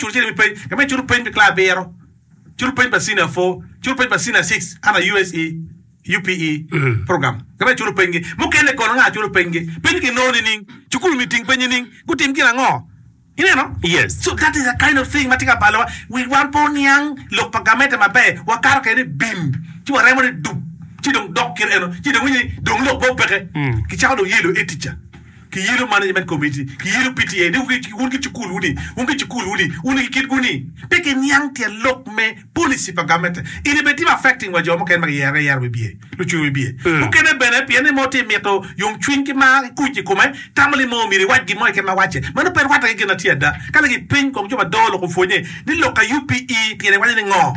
Cut cene me peny ka meno, cut peny me kla abiro, cut peny pa Senior Four, cut peny pa Senior Six under USE, UPE, program. Ka meno cut penygi mukene kono nga cut penygi? Peny kinongo nining? Cukul myero oting peny nining? Gutim gin ango? Ineno? Yes. So that is a kind of thing ma tye ka balowa. Wi wan pe oniang lok pa gamente maber, wakato kwede ni bim ci waremo ni duk ci dong dok kit eno ci dong iwinyo ni dong lok pe opeke, kicako dong yelo etica. Kiyelo management committee, kiyelo PTA ni wun ki cukul wuni, wun ki cukul wuni, wun ki kitwu ni pe kiniang tyen lok me policy pa gamente ini bene timo affecting wa jo mukene ma kiyero ayera wibye, lucwe wibye. Mukene bene pien ni mo tye mito yomcwiny ki mar ki kuc ikome tamo ni mo myero iwac gin mo keken ma wacce. Mano pe rwatte ki gin na tye ada. Ka lagi piny kong jo ma doo lok opwonye ni lok ka UPE pire iwaco ni ngo.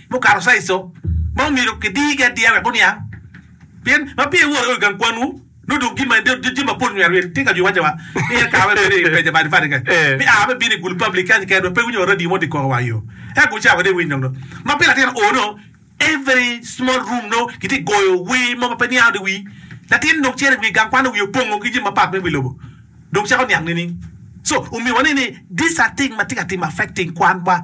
mukato caeco ma omyero kidirgi adira wek guniang, pien ma peya iworo iye i gang kwanwu, nongo dong gin ma en jami mapol myero amyero itim ka jwi iwaco wa ni en kawa me bedo i beja badi badi kek me aa me bino i gulu public kany keken wek pe iwinyo radio mo dikoko wa yo eka gu cawa wade iwiny dong do ma pire latin oo nongo every small room nongo giti goyo wer mo ma pe niango di wii latin dong cito i wi gang kwan wiye opongo ki jami mapat me wi lobo dong cako niang nining so omiyo waneno ni these are thing ma tye ka timo affecting kwan wa.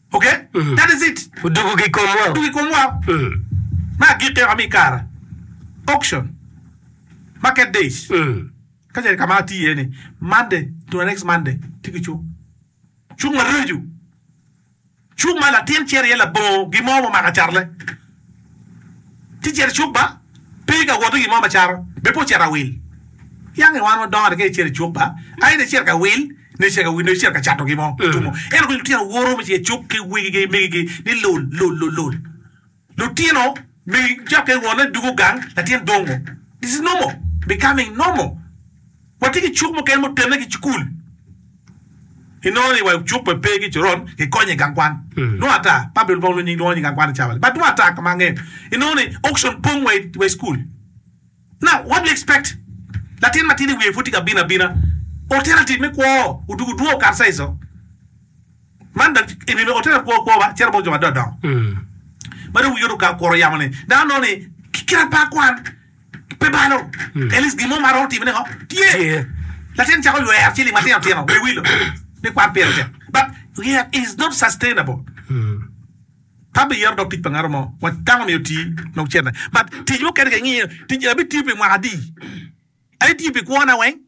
Odugo ki i komwa. Me agikki, oa mi i kare auction, market days, ka ce ka ma ati iye ni Monday to the next Monday tye ki cuk. Cuk ma reco, cuk ma latin cere iye labongo gin mo mumako acatle. Ci cito icuk ba, pe ka woto gin mo macato, bene pe ocito awil. Yange wan wadongo atika icito icuk ba, aye nongo icito ka wil, nongo icito ka wil, nongo icito ka cato gin mo tumo. Ento kong lutino woto me cito icuk ki wegigi ki megigi ni lul, lul, lul, lul. Lutino me cokke wonne dugo gang, latin dongo. This is normal, becoming normal. Watye ki cuk mukene mutenne ki cukul. Inongo ni wa i cuk pe pe ki coron, kikonyo i gang kwan. Nongo ata Public Bong Lunying lwongo ni gang kwan Chavali. But nongo ata ka ma angeyo, inongo ni auction pong wa i cukul. Now, what do you expect? Latin matidi wiye pud tye ka bino abina. Alternative me kwo odwogo dwong okato ca ico. Man dong i nino alternative kwo kwo ba cito bot jo madongo dongo ma dong wigi oruka okuro yamo ni dano nongo ni kite pa kwan Pe balo, at least gin mo ma romo timone ho tye. Latin cako ywer ciling matino tino me wilo me kwan pire tek but yet is not sustainable. Pe abiyero dog tic pa ngatu mo wa dano myero oti nong cente but tic mukene ke ngiyo tic en abitiyo pi mwaka adi? Atiyo pi kwona weng?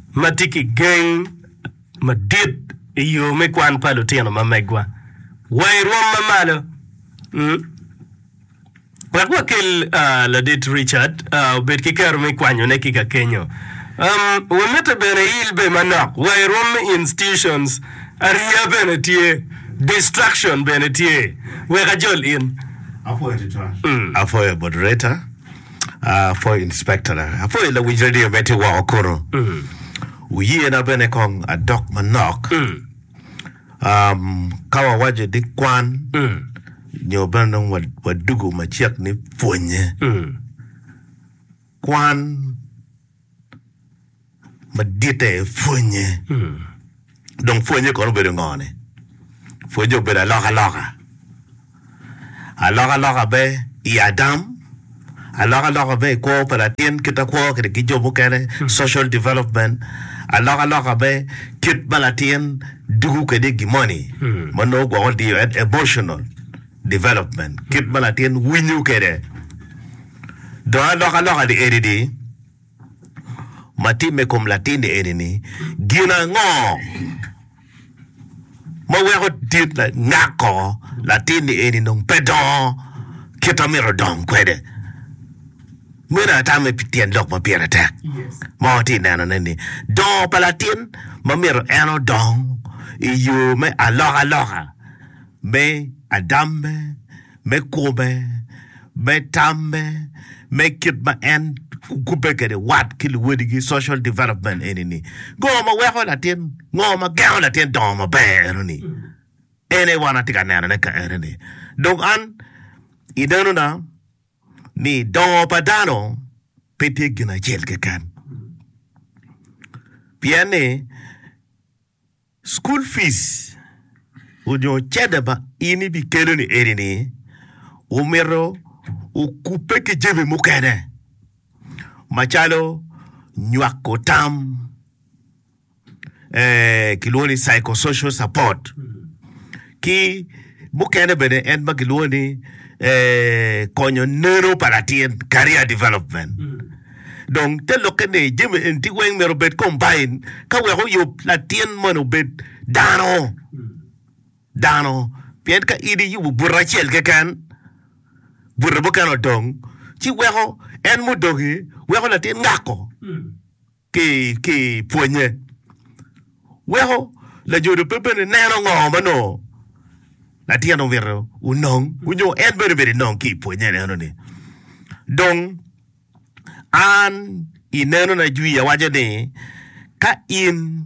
ma tye ki geng madit i yo me kwan pa lutino ma megwa wa i rwom ma malo. Wek wakel Ladit Richard obed ki kero me kwanyone ki kakenyo, wamite bene il be manok wa i rwom me institutions. Ariya bene tye, distraction bene tye. Wek ajol in. Apwoyo bot Rita. Ah for inspector na. Apo i lawinj radio me ti woko kunu. Wuye na bene kong adok manok. Um, ka wawajo ni kwan nyo bene nong wa- wadugu macek ni pwonye. Kwan maditte pwonye dong pwonye kono obedo ngo ni pwonye obedo aloka loka aloka loka be i adam aloka loka be i kwo pa latin kit ma kwo kede ki jo mukene social development aloka loka be kit ma latin dugo kede i gimoni ma nongo gwoko diyo en emotional development kit ma latin winyo kede Dong alokaloka ni eni ni, ma timme kom latinni eni ni, gin ango ma weko dit ngako latinni eni dong pe dongo kit ma myero odong kwede? Meno atame pi tyen lok ma pire tek ma watye ka neno ne ni, dongo pa latin ma myero en odong i yo me alokaloka me adamme. me kome, me tamme, me kit ma en kubbe kwede wat ki luwadigi, social development eni-ni. Ngo ma weko latin, ngo ma gengo latin dongo maber eno-ni? En aye wan atye ka nenone ka eno-ni. Dong an inenona ni dongo pa dano pe tye gin acel keken, pien ni School fees onyo cente ma in ibikelo ni eni ni omito okube ki jami mukene macalo nywako tam kilwongo ni psycho social support. ki mukene bene en ma gilwongo ni konyo neno pa latin career development dong te lokke ni jami eni ti weng myero obed combine ka wek oyub latin moni obed dano dano pien ka in iyubo bute acel keken bute mukene odong ci weko en mudog-gi weko latin ngako ki i pwonye. Weko lajodo pe bene neno ngo ma nongo latin omito onong nyo en bene obedo enong ki i pwonye neno ni dong an i neno na jwi awaco ni ka in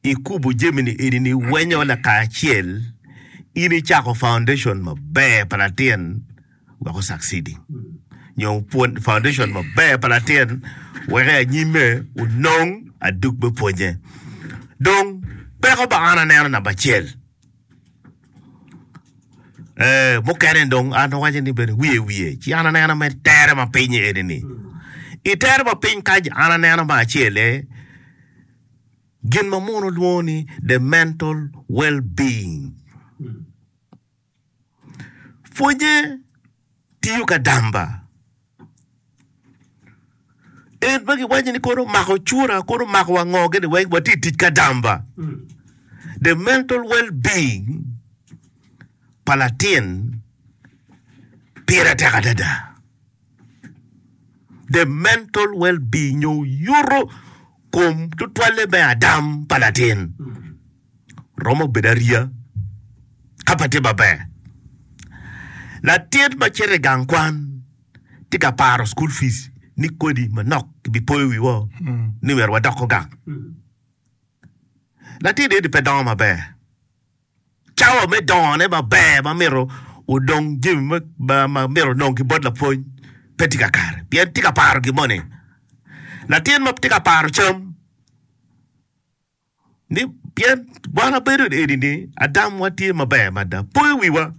i kubu jami ni eni ni wenyo lakacel in i cako foundation maber pa latin. weko succeeding nyo pwod foundation maber pa latin weko i anyime onong aduk me pwonye dong peko ba an aneno namba acel eh, mukene dong an awaco ni bene wiye wiye ci an aneno me tere ma piny eni ni i tere ma piny kac an aneno ma acel eh, gin ma muno lwongo ni the mental well being Pwonye tiyo ka damba. En ma giwaco ni kono omako cura, kono omako wa ngo gini weng watye i tic ka damba. The mental well being pa latin pire tek adada. The mental well being nyo yuto kom tutwalle me adam pa latin. romo bedo ariya ka pe tye maber. Latin ma cito i gang kwan tye ka paro cukul pic ni kodi manok kibipoyo wiwa ni myero wadoko gang. Latin eni pe dongo maber. Cawa me dongone maber ma myero odong jami ma ma- ma myero onong ki bot lapwony pe tye kakare pien tye ka paro gin moni. Latin ma tye ka paro cam ni pien wan wabedo eni ni Adam wa tye maber mada poyo wiwa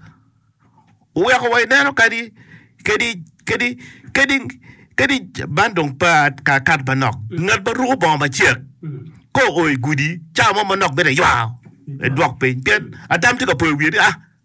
oweko wa ineno kadi kadi kadi kadi kadi man dong pa ka kat manok ngat ma ruko bongo macek ko oo igudi cawa mo manok bedo aywa edwok piny pien Adam tye ka poyo wiye ni a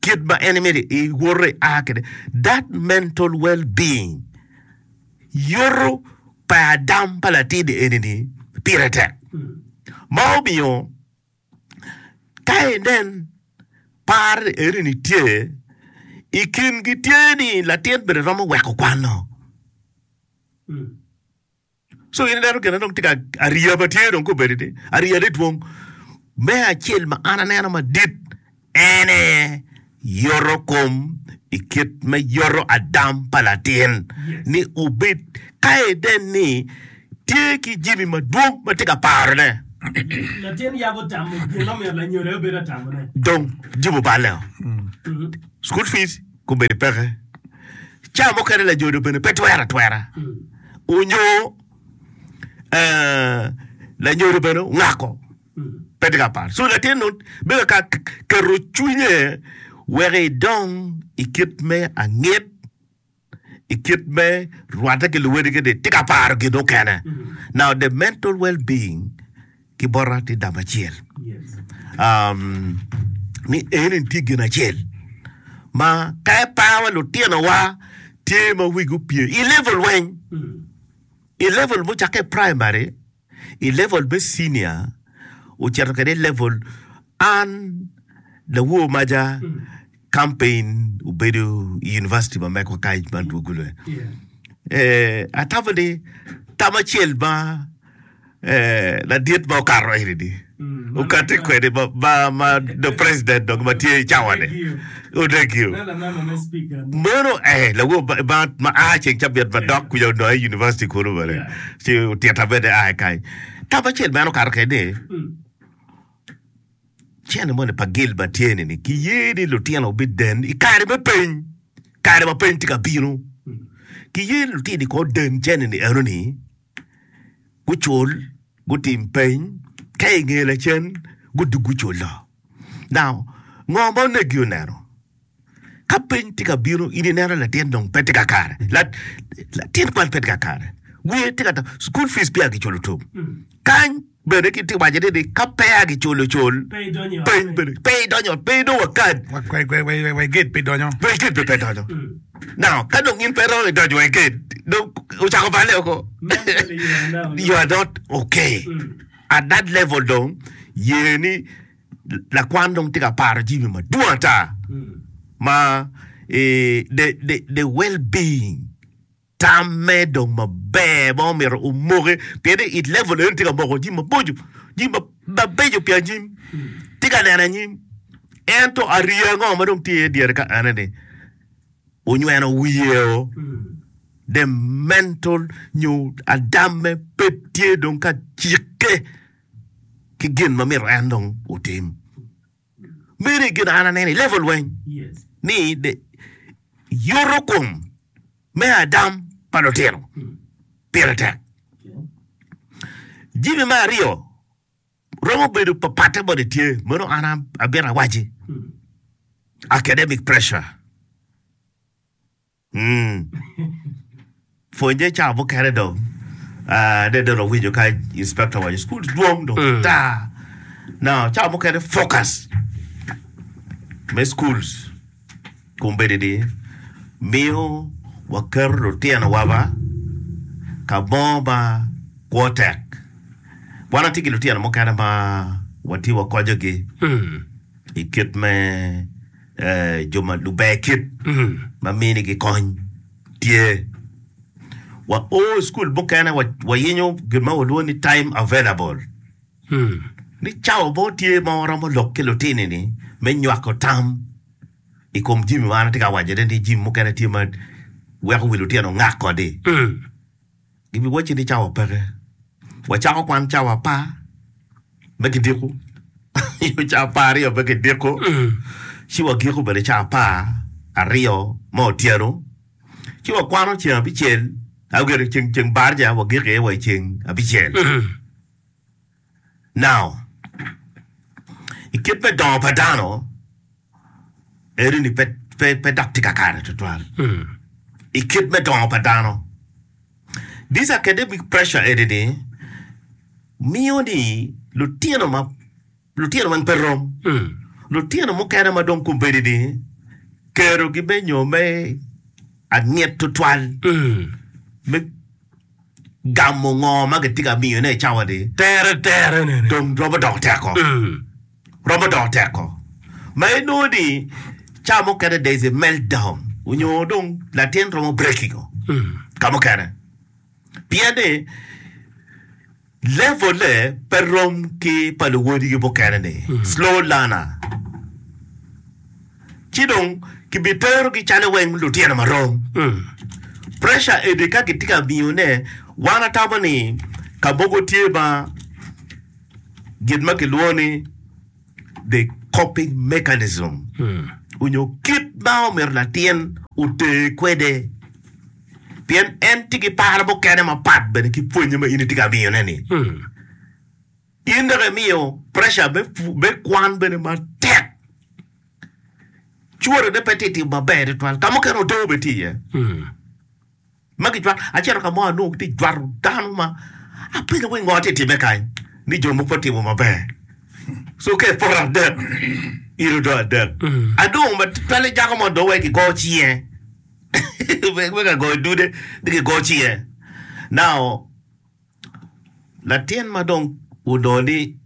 Kit ma en imito i woto i a kede that mental well being yoto pa adam pa latin eni ni pire tek ma omiyo ka inen par eni ni tye i kin gi tye ni latin bene romo weko kwano. So in ineno gine dong tye ka ariya ba tye dong kobedi ni ariya ne dwong. Me acel ma an aneno madit en aye yoto kom i kit me yoto adam pa latin ni obed ka ede ni tye ki jimi madwong ma tye ka parone. Latin yabo tamo gin ma omyero lanyodo aye obed atamone. Dong jimo balle o, school fees. gubedo peke. Cawa mukene lajodo bene pe twero atwera onyo lanyodo bene ongako pe tye ka par. So latin nu bedo ka keto cwinye wek idong i kit me angit i kit me rwate ki luwedi kidi tye ka paro gin mukene. Now the mental well being ki bota tye dam acel ni eni tye gin acel ma ka epawa lutinowa tye ma wigi opye i level weng i level mucakke i primary i level me cinia ocito kede i level an lawor maja campaign obedo i University ma Meko kany ma adwogo lwe. Eh, atamo ni tam acel ma eh, ladit ma okato eni ni okate kwede ma, ma, ma the president dok ma tye i cawani odegio. Mono eh, lawo ba- ba- ma a ceng cabit ma dok kuja onongo i university kunu bene. Ci otyeta bene a kany. Tam acel ma en okato kede ni Cene moni pa Gilbert tye ni, ni kiye ni lutino biden i kare me peny, kare ma peny tye ka bino. Kiye ni lutino kong oden cene-ni enoni, gucul, gutim peny, ka i nge lacen gudug gucul do. Now, ngo ma onegi oneno? Ka piny tye ka bino, in ineno ni latin dong pe tye ka kare, latin kwan pe tye ka kare, wiye tye ka tam, cukul fic peya kiculo tum. Kany bene kiwaco ni ka peya kiculo cul, peny bene pe idonyo ot, pe idong wakad. Wai gate pe idonyo. Wai gate pe pe idonyo. Now, ka dong in pe iromo idonyo wai gate, dong ocako balle woko. You are not okay. At that level dong, ye ni. Lakwan dong tye ka paro jami madwong ata ma the well being tam me dong maber ma omyero omoke pien ni it level eni tye ka moko jami maboco jami mabeco pi anyim tye ka neno anyim ento ariya ango ma dong tye iye dyere ka ene ni onyweno wiyeo the mental nyo adam me pe tye dong ka cikke. ki gin ma myero en dong otim. Meri gin an aneno i level lweny ni yuto kom me adam pa lutino pire tek. Jimi me aryo romo bedo papatte bot etye meno an abito awaci academic pressure. Umm pwonye cawa mukene dong nen dong lawinyo ka inspector owaco school tye dwong dong taa no cawa mukene focus me schools kombeddi ni miyo waketo lutino wa ma kamo ma kwo tek wan watye ki lutino mukene ma watye wakonyo gi ikit me jo ma luber kit ma minigi kony tye. Wa o i cukul mukene wa wayinyo gin ma walwongo ni time available. Ni cawa bo tye ma waromo lok ki lutini ni me nywako tam i kom jimi ma an atye ka wacone ni jimi mukene tye ma weko wi lutino ngak kodi. Gibiwacci ni cawa peke. Wacako kwan cawa apar me kidiko, nyo cawa apar aryo me kidiko, ci wagiko bene cawa apar aryo me otyeno, ci wakwano ceng abicel, ceng barca wagiko iye wa i ceng abicel. Now, i kit me dongo pa dano, eri ni pe, pe, pe dok tye kakare tutwal. I kit me dongo pa dano, this academic pressure eri ni miyo ni lutino ma lutino weng pe rom. Lutino mukene ma dong kombeddi ni kerogi me nyo me angit tutwal me gamo ngo ma kitye ka miyone i cawa-ni dong romo doko teko, romo doko teko ma inongo ni cawa mukene there is a meltdown onyo dong latin romo breaking-o ka mukene pien ni. Level-le pe rom ki pa luwodigi mukene-ni, slow learner, ci dong kibiterogi calo weng lutino ma rom. Pressure eni ka kitye ka miyone, wan atamo ni ka mogo tye ma gin ma kilwongo ni. the coping mechanism onyo kit ma omyero latin oter kwede pien en tye ki paro mukene mapat bene ki pwonye ma in itye ka miyone ni. In dok imiyo pressure me pu- me kwan bene matek. Cworone pe tye timo maber tutwal. Ka mukene oto bene tye iye. ma gijwato. Acito ka mo anongo gitye ka jwato dano ma apenyo ni ngo tye ka timme kany ni jo mogo pe gutimo maber. So ka eporo adek, iro odong adek. Adong ma twale jako mo dong wai kigo cinge me ka goyo dude ni kigo cinge. Now latin ma dong onongo ni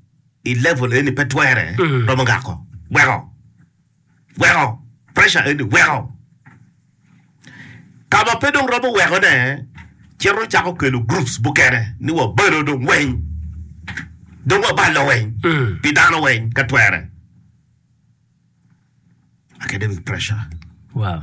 i level eni pe twere romo ngako weko. weko pressure eni weko kama pe dong romo weko ne cito ocako kelo groups mukene ni wa balo dong weng dong wa balo weng pi dano weng ka twere academic pressure. Wow.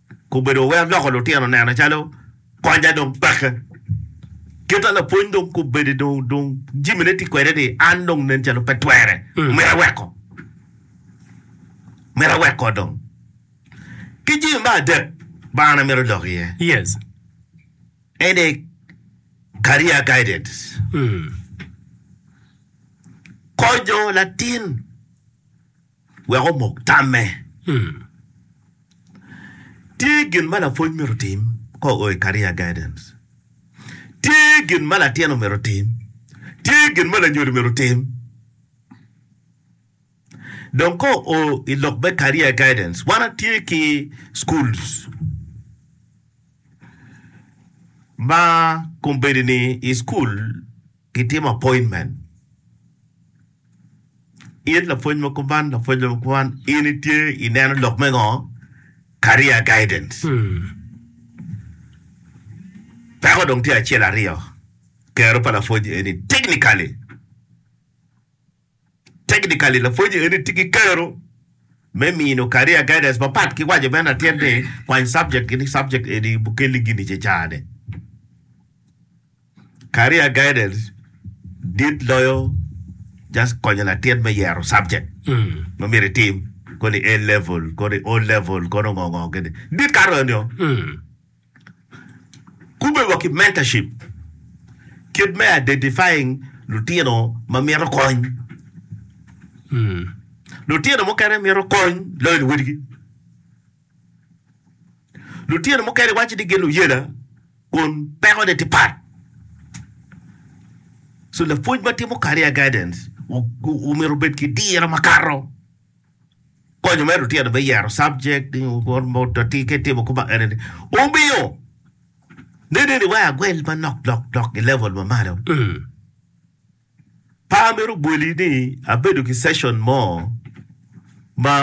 Gubedo wek loko lutino nena calo konya dong peke. Kite lapwony dong kubedi dong dong jimi ne ti kwede ni an dong nen calo pe twere. Mm. Mira weko. Mira weko dong. Ki jimi me adek ma an amiro lok iye. Yes. Ene career guidance. Mm. Konyo latin. wek omok tamme. Tye gin ma lapwony myero otim ka oo i Career Guidance? Tye gin ma latin omyero otim? Tye gin ma lanyodo myero otim? Dong ka oo i lok me Career Guidance, wan watye ki schools ma kombeddi-ni i school, Gitimo appointment it lapwony ma kuman, lapwony ma kuman, in itye ineno lok me ngo? Career guidance. Peko dong tye acel aryo, kero pa lapwony eni technically. Technically, lapwonye eni tye ki kero me mino career guidance mapat ki waco bene latin ni kwany subject kini subject eni mukeli gini ce cane. Career guidance dit loyo just konyo latin me yero subject ma myero itim koni A level, koni O level, kono ngo ngo kini. Dit kato enio. Kube wa ki Mentorship, Kit me Identifying Lutino ma Mito Kony, Lutino mukene mito kony loyo luwadigi. Lutino mukene iwaco ni gin luyela kun pekone tye pat. So, lapwony ma timo career guidance omyero obed ki diro makato. Konyo me lutino me yero subject ki ka itimo kuma eni ni omiyo nene ni wai agwel manok lok lok i level ma malo. Pa amito bwoli ni abedo ki session mo ma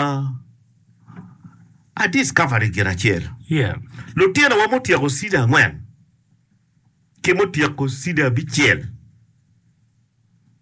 a discovery gin acel. Yeah. Lutinowa mutyeko senior angwen ki mutyeko senior abicel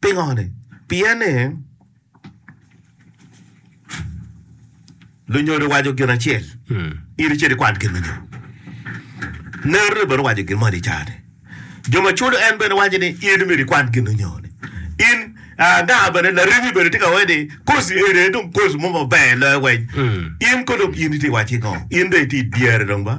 Pingone? Pien ni lunyodo waco gin acel, in icit ikwan gin lunyodo. Nerone bene owaco gin moni i car-ri. Jo ma culo en bene waco ni in myero ikwan gin lunyodi. In anga bene laremi bene tye ka waci ni koci eni aye dong koci mo maber loyo weny. In ko dong in itye iwaci ngo? In dong itye i dyere dong ba.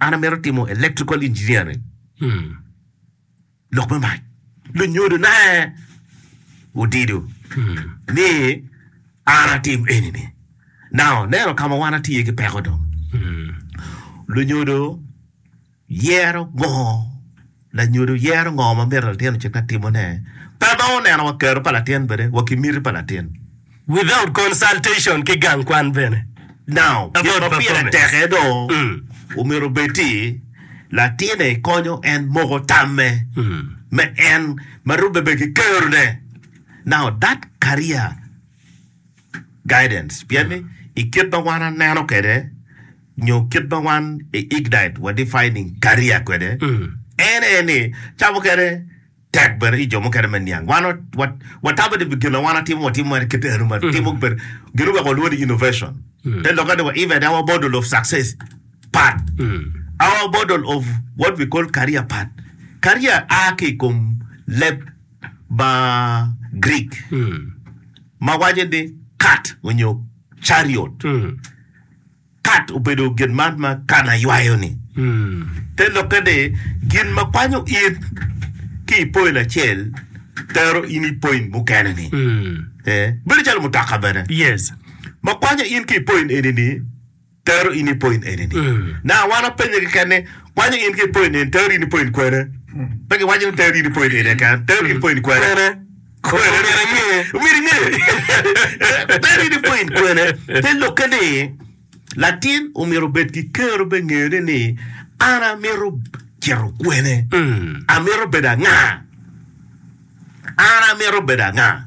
An amito timo electrical engineering. Hmm. Lok me mac. Lunyodo na odido hmm. ni an atim eni ni. Now, neno kama wan atiye ki peko dong. Hmm. Lunyodo yero gongo Lanyodo yero ngo ma myero latin ocikna timone pe ma oneno wa kero pa latin bene wa ki miti pa latin. Without consultation ki gang kwan bene. Now, gin ma pire tek aye do omyero obed ti latin-e ikonyo en moko tamme me en ma rubbe bene ki kero ne. Now, that career guidance pien ni ikit ma wan aneno kede, nyo kit ma wan i Ignite wa defining career kwede en aye ni ca mukene tek bene ki jo mukene me niang. Wan wa wa tamo ni gin ma wan watimo watimo mere kit eno ma timo bene gin oweko walwongo ni innovation. Te lokke ni wa even our model of success part our model of what we call career part. Career a ki i kom leb ma Greek ma waco ni kat onyo chariot. Kat obedo gin man ma kan aywayo-ni, te lokke ni gin ma kwanyo it ki i poin acel tero in i poin mukene-ni. Bedo calo mutoka bene ma kwanyo in ki i poin eni-ni tero in i poin eni-ni. Na wan wapenye keken ni, Kwanyo in ki i poin eni tero in i poin kwene? Pe giwaco ni tero in i poin eni keken, tero in i poin kwene? Kwene myero aye? Myero inge. Ber in ipwo in kwene. Te lokke ni latin omyero obed ki kero be ngeyone ni an amyero cito kwene. Amyero bedo anga? An amyero bedo anga?